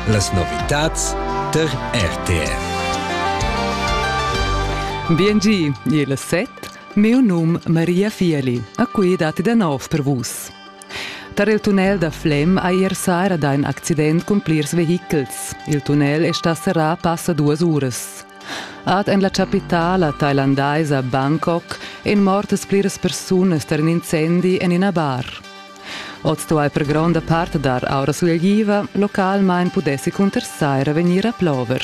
Las novitads tar RTR. Biengi, il set, meu num Maria Fieli, a cui datti da nov per vus. Tar il tunnel da Flem ha ier sera da in accident cun plirs vehichels. Il tunnel è stà serrà passa duas uras. Ad en la chapitala thailandaisa Bangkok èn mortas pliras persunas tar in incendi en ina bar. Oz stuai per gronda part dar aura sulegliva, localmein pudessi cuntersai revegnir a plover.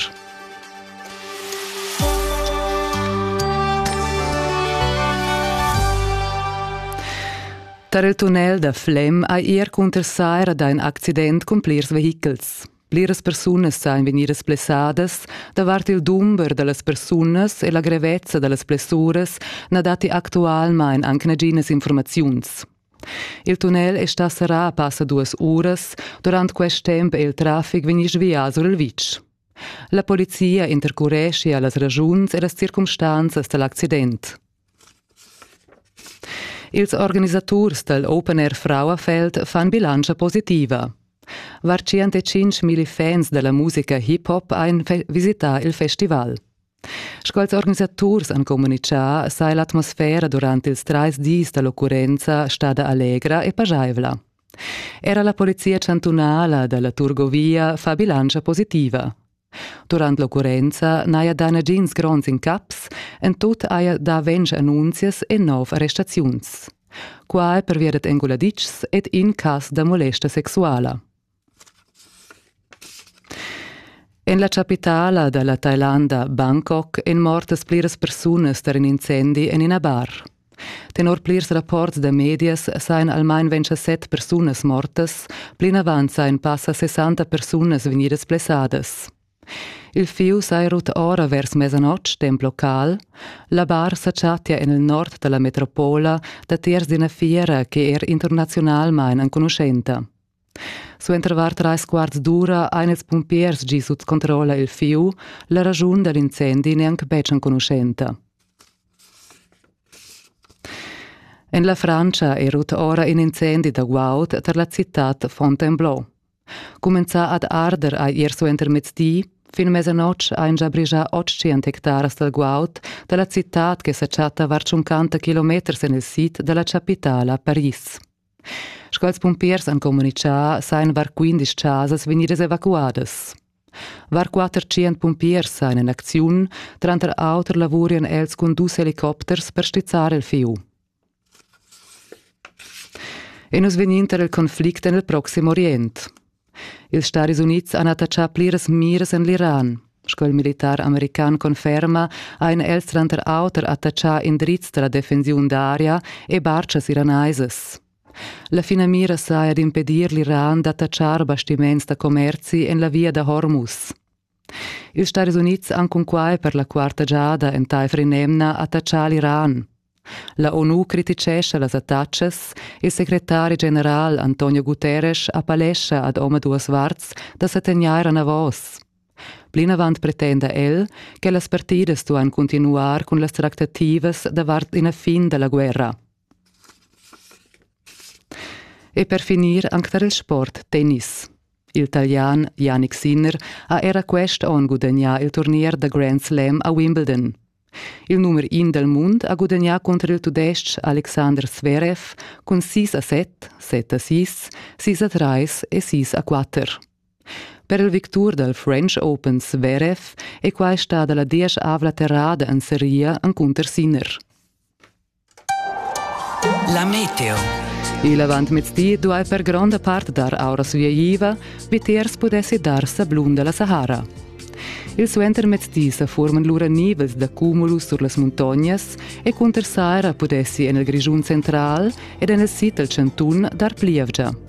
Tar il tunnel da Flem hai er cuntersaira d'un accident cun plirs vehichels. Pliras persunas san vegnidas plessadas davart il dumber da las persunas e la grevezza da las plessuras na datti actualmain anc naginas informaziuns. Il tunnel è stà serrà a passa duas uras. Durant quest temp è il traffic vegnì svià sur il vitg. La polizia intercureschia las ragiuns e las circumstanzas da l'accident. Ils organisaturs dal Open Air Frauenfeld fan bilantscha positiva. Var 105.000 fans da la musica hip-hop ein visità il festival. Sch'als organisaturs han communitgà, saja l'atmosfera durant ils trais dis da l'occurrenza stada allegra e pajaivla. Era la polizia chantunala da la Turgovia fa bilantscha positiva. Durant l'occurrenza n'haja dà nagins gronds incaps, en tut haja dà ventg annunzias e nov arrestaziuns. Quai pervia dad enguladitschs ed in cas da molesta sexuala. En la chapitala da la Tailanda Bangkok èn mortas pliras persunas tar in incendi en ina bar. Tenor plirs rapports da medias sajan almain 27 persunas mortas, plinavant sajan passa 60 persunas vegnidas blessadas. Il fieu saja rut ora vers mesanotg, temp local. La bar sa chattia en il nord da la metropola datiers d'ina fiera che er internaziunalmain enconuschenta. Suenter var trais quarts d'ura ein ils pumpiers gi sut controlla il fiu. La raschun dad incendi neanc betg enconuschenta. En la Francia è rut ora in incendi da guaud tar la citad Fontainebleau. Cumenzà ad arder ha ier suenter mezdi, fin mesanotg ein già brigia 800 hectaras dal guaud da la citad che sa chatta var 50 kilometers en il sid da la chapitala Paris. Sch'als pumpiers han communitgà, sajan var quindesch chasas vegnidas evacuadas. Var quatter tschient pumpiers sajan en acziun, tranter auter lavurian els cun dus helicopters per stizzar il fieu. E nus vegnin tar il conflict en il Proxim Orient. Ils Stadis Unids han attachà pliras miras en l'Iran. Sco il militar american conferma, han els tranter auter attachà indrizs da la defensiun d'aria e bartschas iranaisas. La finamira saja d'impedir l'Iran d'attachar bastiments da commerzi en la via da Hormuz. Ils Stadis Unids han cunquai per la quarta giada entaifer in'emna attachà l'Iran. La ONU crititgescha las attachas. Il secretari general Antonio Guterres appellescha ad omaduas varts da sa tegnair anavos. Plinavant pretenda el che las partidas duan cuntinuar cun las tractativas davart ina fin da la guerra. E per finir anc tar il sport tennis. Il Italian Yannick Sinner ha era quest onn gudagnà il turnier da Grand Slam a Wimbledon. Il numer in dal mund ha gudagnà cunter il tudestg Alexander Zverev cun sis a set, set a sis, sis a trais e sis a quatter. Per il victur dal French Open Zverev è quai stada la dieschavla terrada en seria encunter Sinner. La meteo. Il avantmezdi duai per gronda part dar aura sviaiva, vitiers pudessi dar sablun da la Sahara. Il suentermezdi sa forman lura nivels da cumulus sur las muntognas e cunter saira pudessi en il Grischun central ed en il sid dal chantun dar plievgia.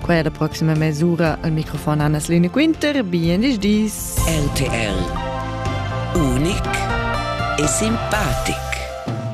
Quai è la proxima mesura al microfon Anna Lene Quinter. Bienvenue dis. RTL. Unic e simpatic.